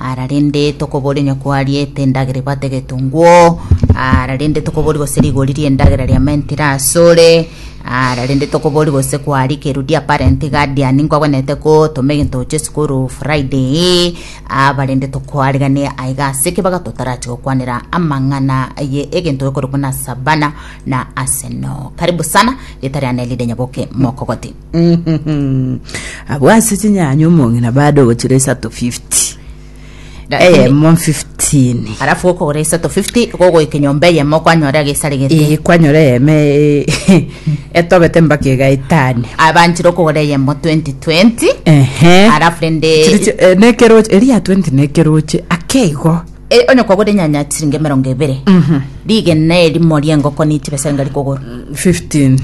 Ara rende tokoboria onye kwariete endagera ebate egetongwo, ara rende tokoboria gose rigori ri'endagera riamentire ire asore, ara rende tokoboria gose kwarikerwe diapparent guardian nkwabwanete gotoma egento gochia esukuru Friday, aba rende tokwariganie aiga ase ki bagatotarachi gokwanera amang'ana ye egento gekorokwa na Savana na Arsenal. Karibu sana, rita riane rire Nyaboke Mokogoti. abwo ase chinyanya omong'ina bade ogochira isato 50 Lakini- eyemo 15 alafu okogora isato 50 gogoika enyomba eyemo kwanyora egesare gete Eh, kwanyora eyeme eh, etobete mpaka egaetani abanchire okogora eyemo 2020 ehe alafu rende Chiri chi- eh, nekeroche eria 20 nekeroche akeigo E, onye kwagwete enyanya chiringi emerongo ebere rigena erimo ri'engoko ni chibesa enga rikogora 15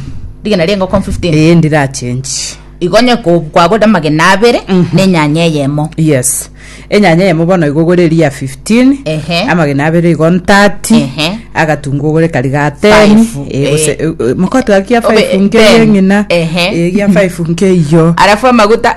rigena ri'engoko 15 ee ndirachenji igo onye ko- kwagwete amagena abere na enyanya eyemo yes enyanya eyemo bono igo ogore eria ya 15 Ehe. amagena abere igo 30 Ehe. agatungu ogore kari ga 10 Five, Eh, gose- eh. eh, mokotwaki ya Obe- 5 ten. nkeyeng'ina Ehe. eria 5 nkeiyo arafu amaguta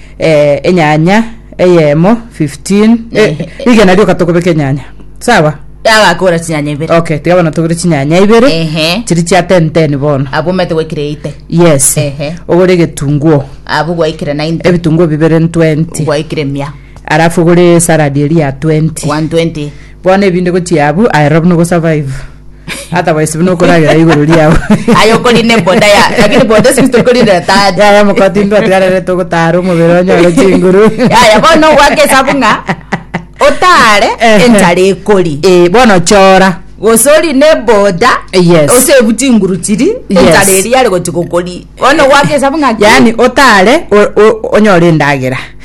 eh, enyanya eyemo 15 eh, Ehe. rigena rioka tokobeka enyanya sawa agakora chinyanya ibere okay tiga bono togore chinyanya ibere Ehe. chiri chia tenten bono abwo mete gwekire ite yes Ehe. ogore egetunguo abwo gwaikire 90 ebitunguo bibere 20 gwaikire mia alafu ogore salad eri ya 20 120 bono ebinde gochia abu aero buna ogosurvive Hata waisi buna okoragera igoro riao. Aye okori ne boda ya lakini boda sisi tokori na tati. Yaya mokoti ndwa tiarere togotara omobere onyore chinguru. Yaya bono gwake esabu ng'a otare Ehe. enchara ekori. Eh, bono chora. Gose ori ne boda Yes. osebu chinguru chiri Yes. enchara eria yare gochi gokori. Bono gwake esabu ng'a ki? Yaani otare o- o- onyore endagera.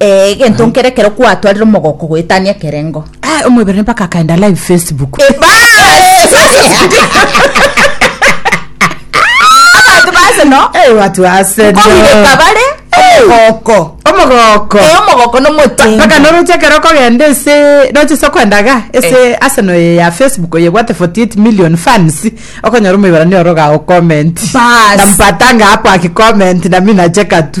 Eh, egento nkere ekero kwatwarire omogoko goetania ekerengo. Ah, omwebere mpaka akaenda live facebook Abanto base no. Eh, watu wa Arsenal. Kogireka bare omogoko. omogoko Eh, omogoko nomotingi. mpaka noroche ekero okogenda ase roche se okwendaga ase arsenal eye ya facebook eye bwate 48 million fans okonyora omweberani oroga o comment Bas. na mpatanga hapo akicomment nami nacheka tu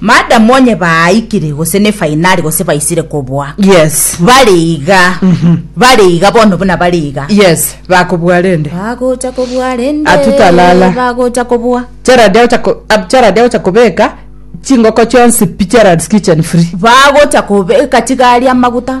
Madam onye baaikire gose ne fainari gose baisire koboa Yes. bare iga bare iga bono buna bare iga Yes, bakobua rende. bagocha kobua rende Atutalala. bagocha kobua Gerald agocha ko- ab- Gerald agocha kobeka chingoko chionsi pi Gerald's kitchen free. bagocha kobeka chigari amaguta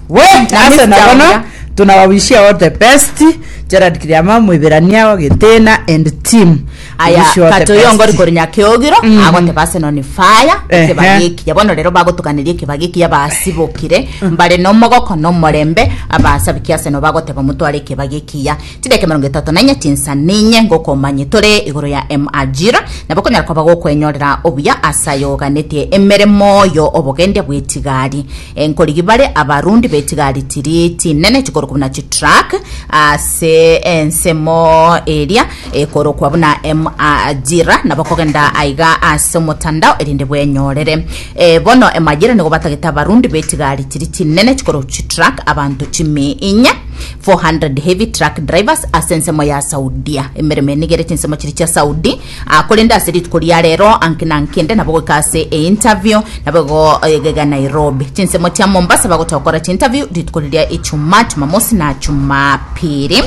We, nase na bono tuna wa wish you all the best Gerald Kiriama Moiberania wa Getena and team We aya wish you all the kato best. yongori kori nyakeogiro Mhm. agoteba ase noni faya Ehe. ekebagi ekiya bono rero bagotokaneria ekebagi ekiya basibokire mbare nomogoko nomorembe abasabiki ase no bagoteba motware ekebagi ekiya chideka emerongo etato na inye chinsa ninye ngokomanye tore igoro ya emajira nabo konyara koba gokwenyorera obuya ase aye oganetie emeremo yo obogendia bwetigari Enkorigi bare abarundi be chigari chiri chinene chikorokwa buna chitruck ase ensemo eria ekorokwa buna emajira nabo kogenda aiga ase omotandao erinde bwenyorere. Eh, bono emajira nigo batagete abarundi be chigari chiri chinene chikorokwa chitruck abanto chimi inye 400 heavy truck drivers ase ensemo ya Saudia. Emeremo eye nigo ere chinsemo chiri chia Saudi Ah, korende ase rituko ria rero anki na anki inde nabo goika ase e interview, nabo igo egega Nairobi. Chinsemo chia Mombasa bagocha gokora chi interview rituko riria Ijumaa, Jumamosi na Jumapili.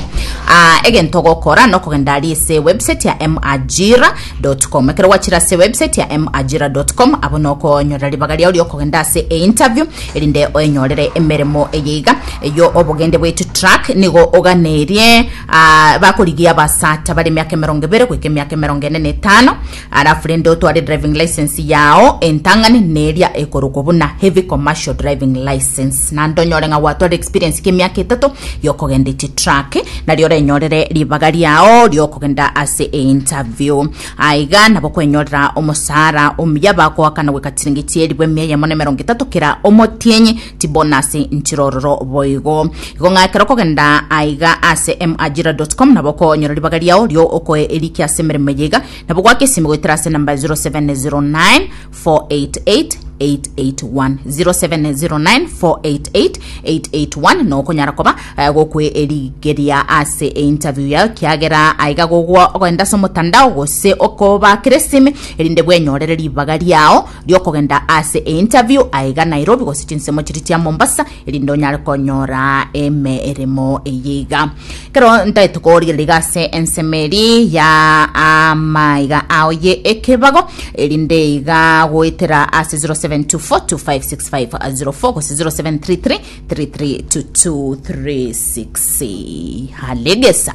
Ah, egento ogokora nokogenda aria ase e website ya MAjira dot com. Ekero gwachire ase e website ya MAjira dot com, abo nokonyora ribaga riao riokogenda ase e interview erinde oenyorere emeremo eye iga. Eyio obogende bwetie track nigo oganerie. Aa, bakorigia abasaacha bare emiaka emerongo ebere goika emiaka emerongo ene na etano, arafu rende otware driving license yao entang'ani neria ekorokwa buna heavy commercial driving license, naende onyore ng'a gwatware experience y'emiaka etato y'okogenda echitruck, nario orenyorere ribaga riao ri'okogenda ase einterview. Aiga nabo okwenyorera omosaara omuya, bakoakana goika chiringi chi'eribu emia eyemo na emerongo etato kera omotienyi, tibonasi nchirororo boigo igo ng'a ekero okogenda aiga ase majira.com nabo okonyora ribaga riao rio okoe eriki ase emeremo eye iga nabo gwake esimi goetera ase namba 0709 488 881 0709 488 881 na okonyara koba eh, gokwe erigeria ase interview yao kiagera aiga gogwa ogenda ase omotandao gose okobakera esimi erinde bwenyorere ribaga riao riokogenda ase e interview aiga Nairobi gose chinsemo chiria chia Mombasa erinde onyare konyora emeremo eye iga. Kero ntaete korigereria iga ase ensemo eri ya amaiga ao ye ekebago erinde iga goetera ase 0724256504 gose 0733332236 halegesa.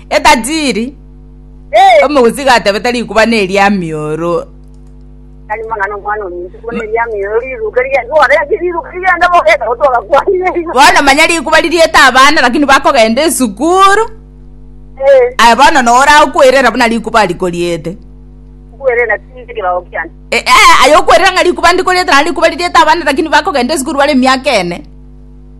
Etajiri Eh, omogusika atebete rikuba neria mioro. tari mang'ana omwana ominto buna eria mioyo riruka ria orenge riruka rigenda bogenda gotoga kwane igo Bono manya rikuba ririete abana lakini bakogenda esukuru. Eh, Aye bono nora okwerera buna rikuba rikoriete. kwere na tinde kirago kiane E, e, aye okwerera ng'a rikuba ndikoriete na rikuba ririete abana lakini bakogenda esukuru bare emiaka ene.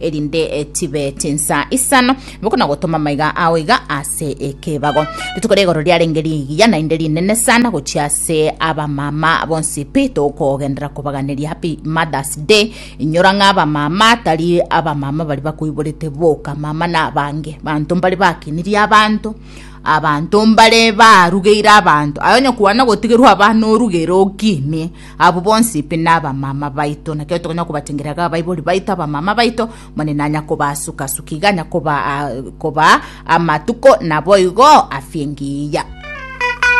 erinde tibe chinsa isano boko na gotoma maiga ao iga ase ekebago rituko rigoro riarenge rigiya naende rinene sana gochia ase abamama bonsi pi tokogendera kobaganeria happy mothers day inyora ng'a abamama tari abamama bari bakoiborete boka mama na abange banto mbari bakinirie abanto abanto mbare barugeire abanto aye onye kwana gotigerwa abana orugere okinie Abwo bonsi pi nabamama baito, naki ekero tokonyara kobatengereria iga abaibori baito, abamama baito, Omonene nanya kobasuka-suka, iga anya kobaa amatuko naboigo afia engiya.